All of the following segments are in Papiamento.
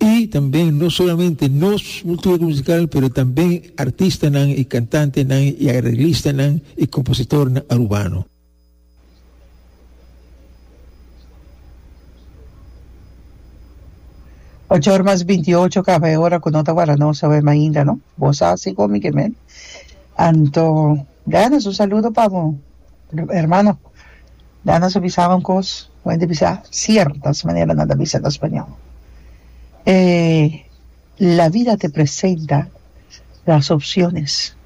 Y tambe no solamente nos multura musical pero tambe artistanan y cantantenan y arreglistanan y compositornan Arubano. Ocho or mas binti ocho caba e ora cu no ta guarda nos, oe mainda no. Bo sa si con mi ke men. Anto. Dennis, un saludo pa bo hermano. Dennis a bisa un cos, wen di bisa ciertas manera nan ta bisa na Spañol. E la vida te presenta las opciones,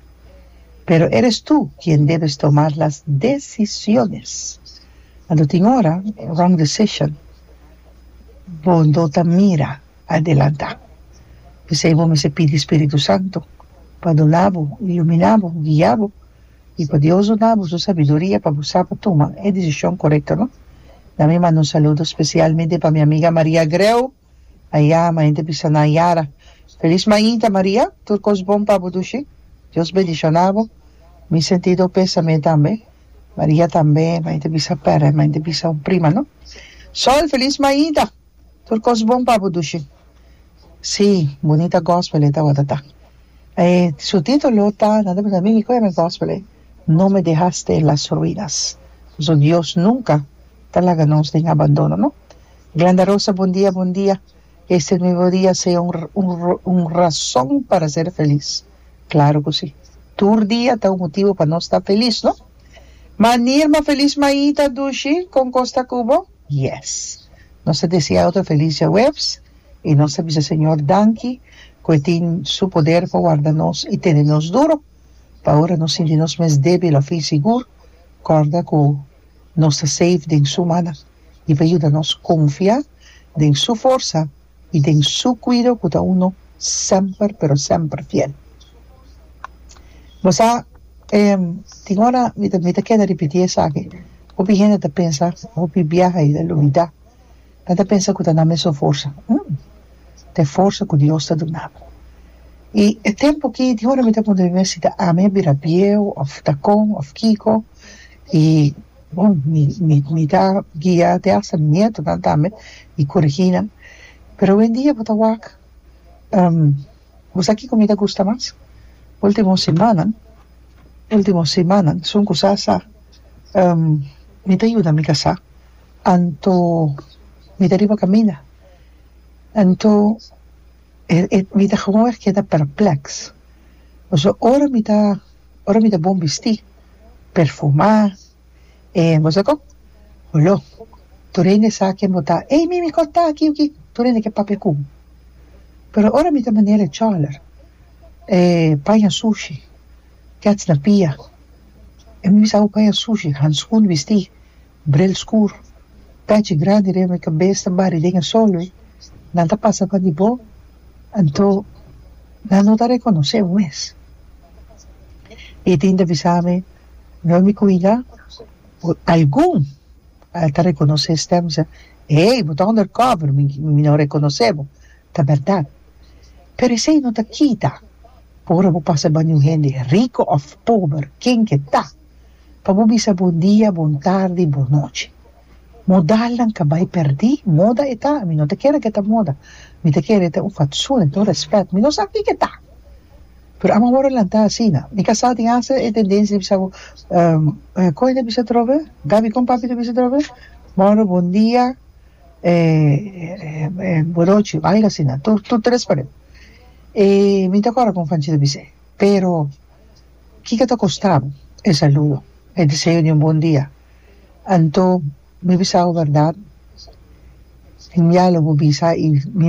pero eres tu quien debes tomar las decisiones. Cuando tin ora wrong decision, bo no ta mira. adelantá. P'esei bo mester pidi spiritu santu pa duna bo, ilumina bo, guia bo i pa Dios duna bo su sabiduria pa bo sa pa tuma e desishon korekto no. Na mi manda un saludo spesialmente pa mi amiga Maria Greu a yama henter bisa nan yara. Felis mainta Maria, tur kos bon pa bo dushi. Dios bendishona bo. Mi sentido pesame tambe. Maria tambe, mainta bisa pere, mainta bisa un prima no. Sol, felis mainta. Tur kos bon pa bo dushi. Sí, bunita gospel e tabata ta. E su titulo ta nan ta pensa mi ki koe nan gospel e No me dejaste en las ruinas. Pasobra Dios nunka ta laga nos den abandono no. Glenda Rosa bon dia bon dia este es nuevo dia sea un un razon para ser feliz claro cu si tur dia ta un motivo pa nos ta feliz no. Manera feliz Maita dushi con cos ta cu bo? Yes. Nos ta desea otro feliz Djahuebs y nos ta bisa Señor danki cu e tin su poder pa warda nos y tene nos duro. Pa ora nos sinti nos mes debil of insigur, corda cu nos ta safe den su mana y pa yuda nos confia den su forsa i den Su kuido ku ta uno semper pero semper fiel. Bo sa, tin ora mi ta keda ripití esaki, hopi hende ta pensa, hopi biaha i ta lubidá, nan ta pensa ku ta nan mes un forsa, hm, ta e forsa ku Dios ta duna bo. I e tempu ki tin ora mi ta puntra mi mes si ta ami a bira bieu òf ta kon òf kiko, i. Bon, mi, mi, mi ta guia te hasta mi nietonan tambe i kurigí nan. Pero owendia bo ta wak. Bo sa kiko mi ta gusta mas? Último simannan, último simannan, sun ku sa sa, mi ta yuda mi kasá, anto mi ta riba kaminda. Anto, e, e, mi ta, mi ta keda perplèks. Pasobra ora mi ta. Ora mi ta bon bistí, perfumá, e bo sa kon? Huló. Tur hende sa ken bo ta, ey mi mi kòt ta aki oki, tur hende ke papia ku bo. Pero ora mi ta manera e chòler, e paña sushi, kèts na pia, mi sa ku paña sushi, hanskun bistí. Bril skur, tachi grandi riba mi kabes ta bari den e sol wi, nan ta pasa pa di bo, anto nan no ta rekonosé bo mes. E tin ta bisa mi, No mi kuida, bo algun a ta rekonosé e stèm sa, Ey, bo ta onder kòber, mi mi no rekonosé bo, ta bèrdat. Pero esei no ta kita pa ora bo pasa bani un hende riko òf pober, ken ke ta. pa bo bisa bon dia, bon tardi, bon nochi. Modalnan ka bai perdí, moda e ta, mi no ta kere ku e ta moda, mi ta kere e ta un fatsoen, e ta un rèspèt, mi no sa kiko e ta, pero amo wòrdu lantá asina, mi ka sa tin hasta e tendensia di bisa bo kon e ta bisa atrobe? Gaby kon papi ta bisa atrobe? Mòrdu bon dia bon nochi, algu asina, tur tur ta rèspòndé, mi no ta kòrda kon Fanchi ta bis'é, pero Kiko ta kostab e saludo, e deseo di un bon dia? Anto mi bisa bo berdad? Genial lo bo bisa i mi.